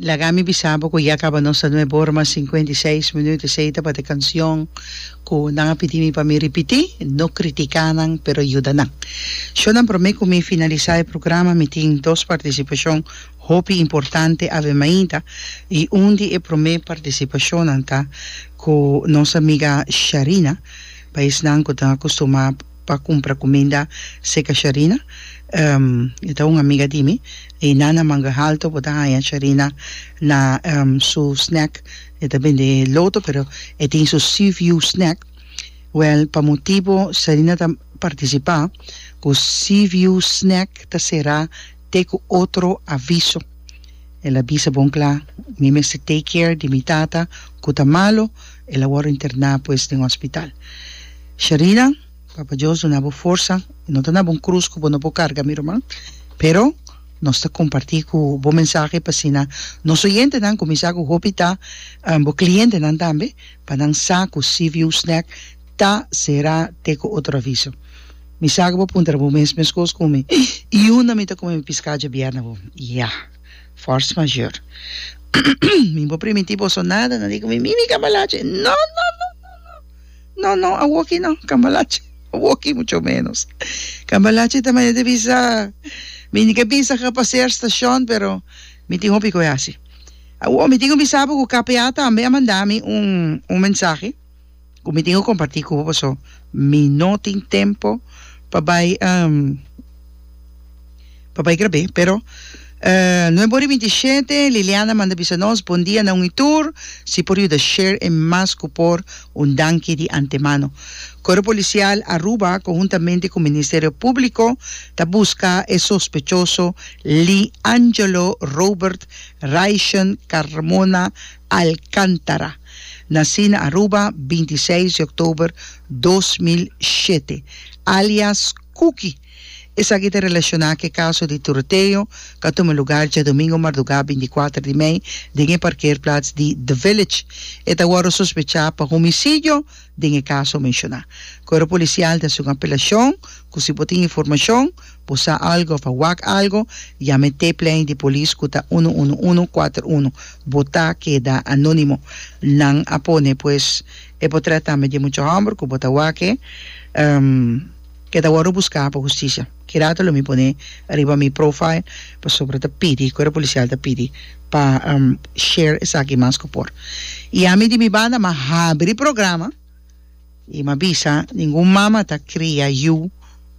Laga mi bisa bo ku ya kaba nos ta nuebe ora mas sinkuenta i seis minüt. Esei tabata e kanshon ku nan a pidi mi pa mi ripití, No kritiká nan, pero yuda nan. Shò nan, promé ku mi finalisá e programa mi tin dos partisipashon hopi importante Ave Maida i un di e promé partisipashonnan ta ku nos amiga Sharina, paes nan ku ta akustumá pa cumpra cuminda seca Sharina e ta un amiga di mi y na na manga halto bo ta haya Sharina na su snack e ta bende loto pero e tin su sea view snack well pa motibo Sharina ta participa cu sea view snack ta cera te cu otro aviso. El a bisa bon cla, Mi mester take care di mi tata cu ta malo, el a worde interna pues den hospital. Sharina, Papa Dios duna bo forsa, no ta na bon cruz cu bo no por carga mi ruman, pero nos ta comparti cu bo mensahe p'asina nos oyentenan cuminsa cu hopi ta bo clientenan tambe pa nan sa cu Seaview Snack Ta será te cu otro aviso. Mi sa cu bo puntra bo mes mescos cu mi. Y unda mi ta come mi piscado dje bierna bo? Ya. Force majeure. Mi bo primiti boso nada, nan di cu mi, Mimi cambalache! No, no, no, no, no! No, no, awoki no, cambalache. Awoki mucho menos. Cambalache ta maya di bisa. Mi ni ke bisa ga pasear stacion, pero mi tin hopi cu e haci. Awo, mi tin cu bisa bo cu KPA tambe a manda mi un, un mensahe. Ku mi tin ku kompartí ku bo paso mi no tin tempo pa bai pa bai grab'é pero no e bon riba inti shete Liliana manda bisa nos bondia nan wi tur si por yuda share e mas ku por un danki di antemano Koro Polisial Aruba konhuntamente ku Ministerio Públiko ta buska e sospechoso Lee Angelo Robert Raishen Carmona Alcántara. Nací na Aruba binti seis di oktober dos mil shete, alias Kuki. Esaki ta relashoná ku e kaso di tiroteo ku a tuma lugar djadumingu mardugá binti kuater di mei den e parkeerplats di The Village. E ta wòrdu sospechá pa homisidio den e kaso menshoná. Koro Polisial ta haci un apelashon ku si bo tin informashon, Bo sa algo of a wak algo? Yama e tapeline di polis ku ta uno uno uno kuater uno. Bo ta keda anónimo. Nan a pone pues e potret tambe di e mucha hòmber ku bo ta wak-e. E ta wòrdu buskà pa hustisia. Ki rato lo mi pone riba mi profile pasobra ta pidi, Kuerpo Polisial ta pidi pa share esaki mas ku por. I ami di mi banda mi a habri programa. I m'a bisa, Ningun mama ta kria yu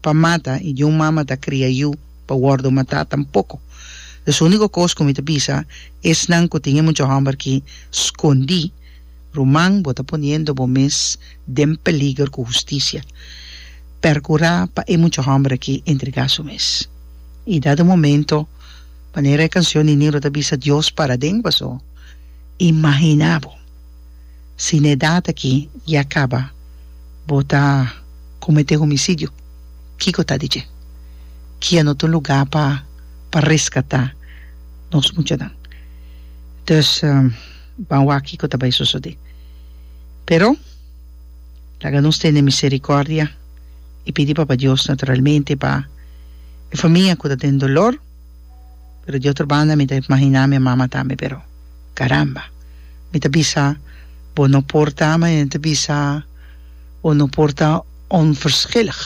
pa mata, i niun mama ta kria yu pa wòrdu matá tampoko. Los úniko kos ku mi ta bisa, esnan ku tin e mucha hòmber ki skondí, Ruman, bo ta poniendo bo mes den peliger ku hustisia. Perkurá pa e mucha hòmber aki entregá su mes. I dat un momento, manera e kansion Nininro ta bisa, Dios para den paso, Imaginá bo! Si na edad aki ya caba bo ta comete homicidio kico ta di dje? Ki a no ta un lugar pa pa rescata nos muchanan. Dus ban waak kico ta bay sosode. Pero laga nos tene misericordia y pidi Papa Dios naturalmente pa e famia cu ta den dolor. pero di otro banda mi ta imaginá mi mama tambe pero caramba mi ta bisa bo no por ta mi ta bisa bo no por ta onverschillig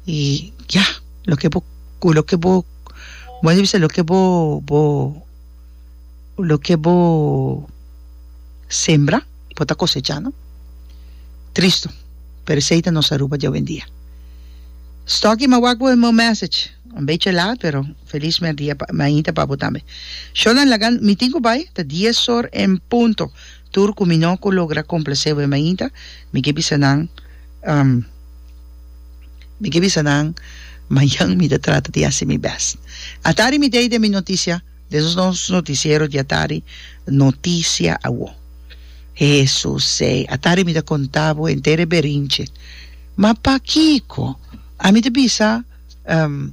y ya loke bo loke bo como mi ta bisa loke bo bo loke bo sembra bo ta cosecha no tristo pero esey ta nos Aruba di awendia stocky mawak bo e message. Un beche laat pero feliz merdia pa Maita pa bo tambe. Shonan laga mi tin cu bay ta dies or en punto tur cu mi no cu logra complace bo e Maita mi ke bisa nan um mi ke bisa nan mayan mi ta trata di haci mi best. Atari mi dei den mi noticia den nos noticiero di atari noticia awo Hesusey atari mi ta conta bo enter e berinche ma pakico ami ta bisa Ehm,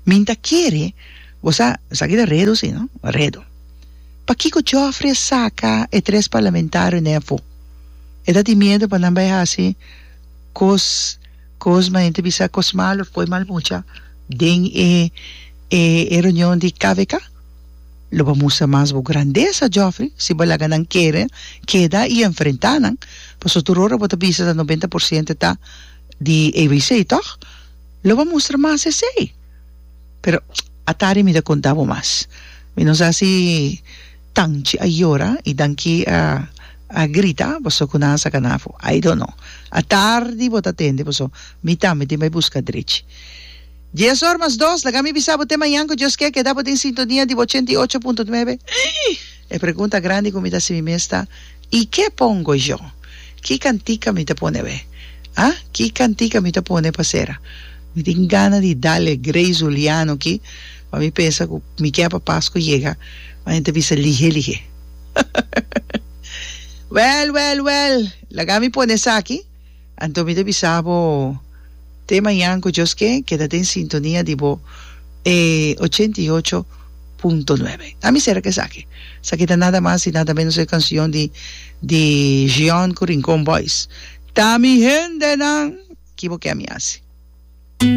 Min ta kere bo sa, sa ki ta redo si no? Redo. Pakiko Joffrey a saka e tres parlamentarionan afo? E ta tin miedo pa nan bai hasi kos kos ma henter bisa kos malo of poi mal mucha den e e reunion di kvk? Lo bo mustra mas bo grandesa Joffrey si bo laga nan kere keda i enfrenta nan paso tur ora bo ta bisa sa noventa por ciento ta di ABC toch? Lo bo a mustra mas esey. Pero atari mi ta conta bo mas. Mi no sa si Tanchi a yora y Danki a a grita paso cu nan a saca nan afo. I don't know. Atardi bo ta tende paso mi tambe tin bay busca drechi. Dies or mas dos laga mi bisa bo te mañan cu Dios ke a keda bo den sintonia di bo ochenta y ocho punto nuebe. E pregunta grandi ku mi ta hasi mi mes ta, I ke pongo yo? Ki kantika mi ta pone awé? A? Ki kantika mi ta pone pa sera? Mi tin gana di dale Grace Juliano aki, ma mi pensa ku mi ke pa Pasku yega, ma nan ta bisa lihé lihé. Wèl, wèl, wèl! Laga mi pone esaki. Anto mi ta bisa bo te mañan ku Dios ke, keda den sintonia di bo e ochenta i ocho punto nuebe. A mi sera ku esaki. Esaki ta nada mas i nada menos e kansion di di Gion ku Rincon Boys, Ta mi hendenan, ki bo ke mi hasi.